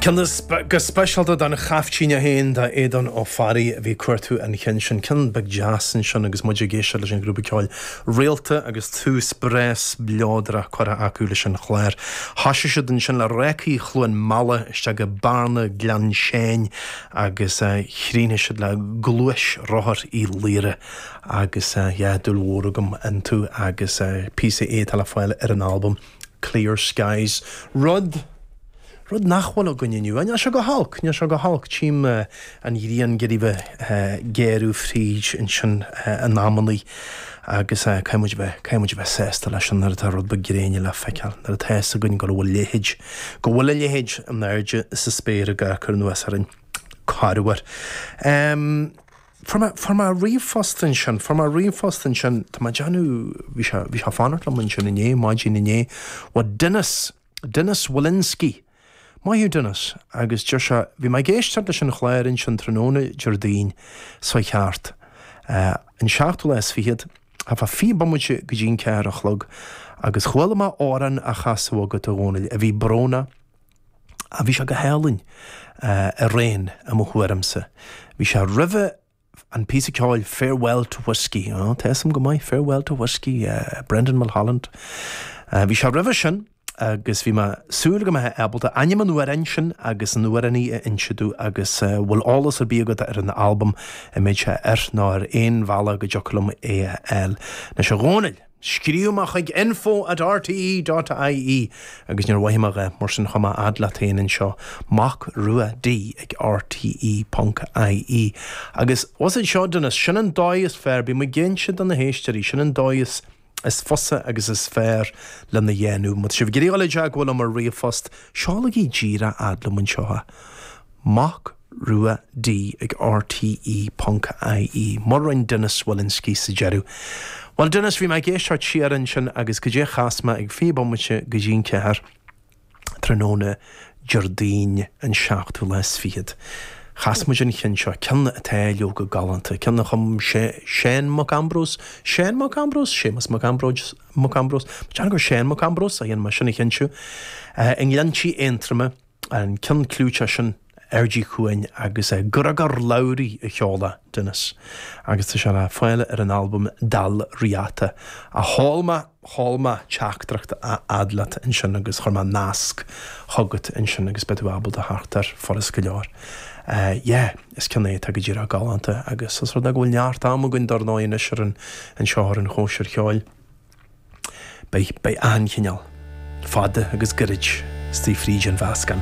Ceann go speisialta don chaiftín é féin, do Aodán Ó Fearraigh, a bhí ag cuartú an chinn sin. Ceann beag deas ansin agus muid ag éisteacht leis an ghrúpa ceoil Réalta agus tús breá spleodrach curtha acu leis an chlár. Thosaigh siad ansin le Rácaí Chluain Meala isteach go Bearna Ghleann Seáin agus chríochnaigh siad le Gluaisrothar Uí Laoire agus yeah dúil mhór agam iontu agus píosa é atá le fáil ar an albam Clear skies. Rud. Rud nach bhfuil againn inniu. Á, níl sé go holc, níl sé go holc. Tchím an ghrian ag iarraidh a bheith ag géarú fríd ansin in amannaí agus caithfidh muid a bheith, caithfidh muid a bheith sásta leis sin nuair atá rud beag gréine le feiceáil, nuair atá fhios againn go raibh a leithéid, go bhfuil a leithéid in airde sa spéir ag cur anuas orainn. Corruair. Fuair mé ríomhphost ansin, fuair mé ríomhphost ansin, tá mé ag déanamh, bhí sé, bhí sé ag fanacht liom ansin inné, maidin inné, ó Dennis, Dennis Wilynski. Maith thú Dennis, agus deir sé, bhí mé ag éisteacht leis an chlár ansin tráthnóna Déardaoin, seo thart, an seachtú lá is fichead, thart fá fiche bomaite go dtí an ceathair a chlog, agus chuala mé amhrán á chasadh agat a Dhónaill, a bhí brónach, Ah, bhí sé go hálainn. Araon, i mo thuairimse. Bhí sé roimhe an píosa ceoil Farewell to Whiskey. Oh, tá 'fhios a'm go maith Farewell to Whiskey, Brendan Mulholland. Bhí sé roimhe sin agus bhí mé ag súil go mbeifeá ábalta ainm an amhráin sin agus an amhránaí a inse domh agus an bhfuil eolas ar bith agat ar an albam a mbeadh sé air nó ar aon bhealach go dtiocfadh liom é a fháil? Anois a Dhónaill. Scríobh mé chuig info at rte.ie agus níor mhoithigh mé a dhath, mar sin chuaigh mé fhad leat féin anseo, Mac Rua D ag rte ponc ie agus was it seo Dennis, sin an dóigh is fearr, bím ag inse do na héisteoirí, sin an dóigh is is fusa agus is fearr lena dhéanamh. Má tá sibh ag iarraidh dul i dteagmháil liom ar ríomhphost, seolaigí díreach fhad liom anseo. Mac. Rua D ag RTÉ ponc IE. Mar a rinn Dennis Wilynski sa deireadh. Bhuel Dennis, bhí mé ag éisteacht siar ansin agus goidé a chas mé ag fiche bomaite go dtí an ceathair tráthnóna Déardaoin an seachtú lá is fichead. Chas muid an ceann seo, ceann atá leoga galánta, ceann a chum Sé, Seán Mac Ambróis, Seán Mac Ambróis? Séamus Mac Ambróis, Mac Ambróis? Mo cheann gur Seán Mac Ambróis é, dhéanfaidh mé sin a chinntiú. I nGleanntí Aontroma, an ceann clúiteach sin. Airdí Cuan agus is é Gregor Lowrey a sheol é, Dennis, agus tá sé le fáil ar an albam Dal Riata. A Cholma, a Cholma, teachtaireacht a fhad leat ansin agus chuir mé nasc chugat ansin agus beidh tú ábalta theacht air furast go leor. Yeah, is ceann é atá go díreach galánta agus is rud é go bhfuil neart am againn dar ndóigh anois ar an an seó ar an chóisir cheoil. Beidh beidh achan chineál fada agus gairid istigh fríd an mheascán.